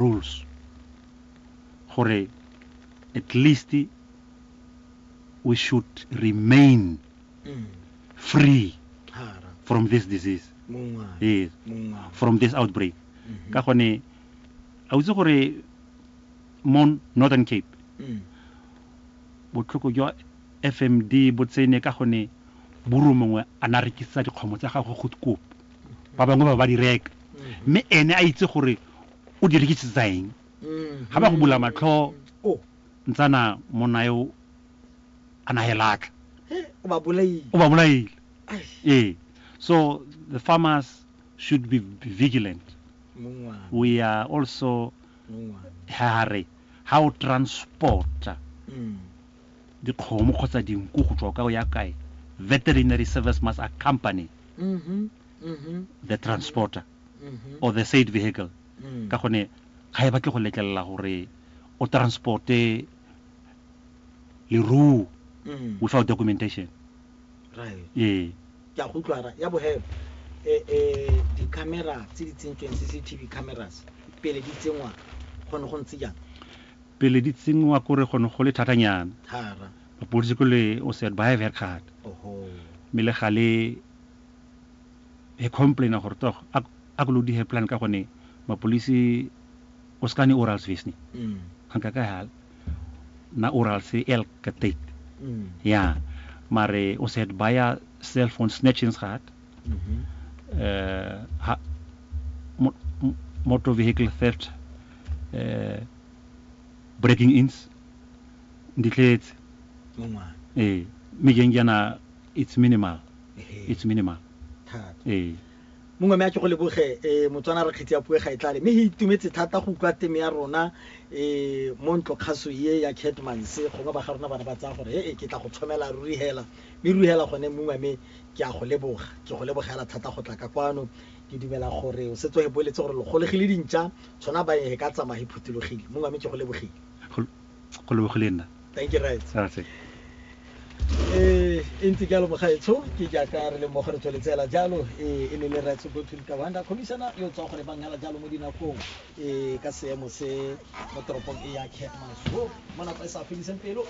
rules gore at least we should remain mm. free from this disease yes from this outbreak mm -hmm. ka gone a utse gore mo northern cape mm. botlhoko jwa fmd bo tsene ka gone buru mongwe a na rekisa dikgomo tsa gagwe go kopo ba bangwe ba ba di reka mme ene a itse gore o di rekisetsa eng ga ba go bula matlho o ntsana monna yo a nagelatla he o ba bolaile o ba bolaile Ai, ee so the farmers should be vigilant mongwana we are also mongwana ha re ha o transporta Mm. dikgomo kgotsa dinku go tswa ka o ya kae veterinary service must accompany the transporter or the said vehicle ka gone ga e batle go letlelela gore o transporte leruo without documentation ee ke a go utlwa ra ya bohelo eh eh di-camera tse di tsentsweng cctv cameras pele di tsenngwa gone go ntse jang Pele di tsenngwa ko re go ne go le thatanyana. Mapodisi ko le o said ba have her card. Mme le gale he complainer gore tog a a ko load her plan ka gone mapolisi o ska ne orals visni. Hanka ka hal na orals elk ka date. Yeah. Mare o said ba ya cellphone snatchings gad. uh, motor vehicle theft uh, breaking ins nditletse ee mme jeng jaana it's minimal it's minimal ee mongwe me a ke go leboge um motswana re kgetsi ya pue ga e tlale mme e itumetse thata go utlwa teme ya rona um mo ntlo kgaso ye ya catmans gongwe ba ga rona bana ba tsaya gore ee ke tla go tshomela ruri hela mme ruri hela gone mongwe me Ke a go leboga. Ke go lebogela thata go tla ka kwano. Ke dumela gore o setse wa e boletse gore lo golegile dintša, tshwana ba e ka tsamaya e phuthulogile. Mongwe wa me ke go lebogile. Go lebogile nna. Thank you rraetsho. Ra se. E e ntse jalo mogaetsho, ke jaaka re le mmogo re tsweletse hela jalo. E e ne le Rraetsho Goodwill Kawanda, Commissioner yo o tswang go lebang hela jalo mo dinakong. e ka seemo se mo toropong e ya Kearns ho mo nako e sa fediseng pelo